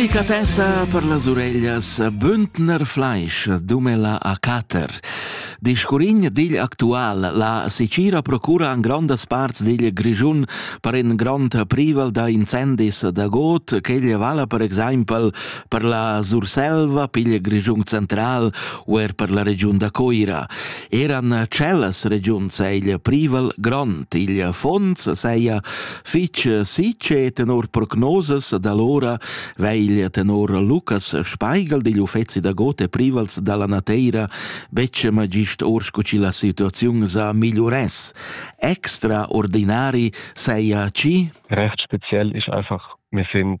Delicatessa per las ureglias Bündner Fleisch dumela a Cater. Discurign digl actual, la Sicira procura an grondas parts digl Grischun per en grond privel da incendis da got, cheglia vala per exempel per la Surselva, pigl Grischun central u er per la regiun da Coira. Eran cellas regiuns egl privel grond, igl Fons seia Fich sicher tenor prognosas da l'ora veglia tenor Lucas Speigel digl uffezi da Gote Privals dalla Nateira betg magist or sco chi la situaziun sa migliuress. Extraordinari seia chi? Recht speziell ist einfach, wir sind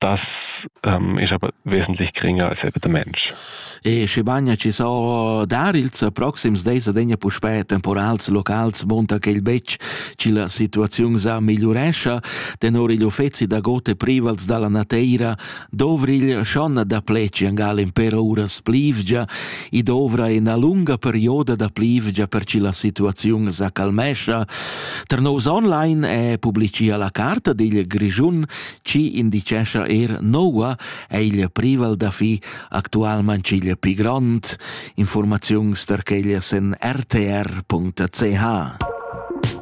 das ähm, ist aber wesentlich geringer als eben der Mensch. E schibagna ci so dar ils proxims dis adegna puspè temporals locals monta che il betg ci la situaziun sa migliurescia, tenor gli uffezi da gote privals dalla nateira dovrigl schon da pleci angal in per uras plivgia i dovra in a lunga perioda da plivgia per ci la situaziun sa calmescia. Ternos online e publicia la carta digl Grigiun Chi indichescha eir noua è il privel da fi actualmain ch'igl pi grond, informaziuns tar quella sen rtr.ch.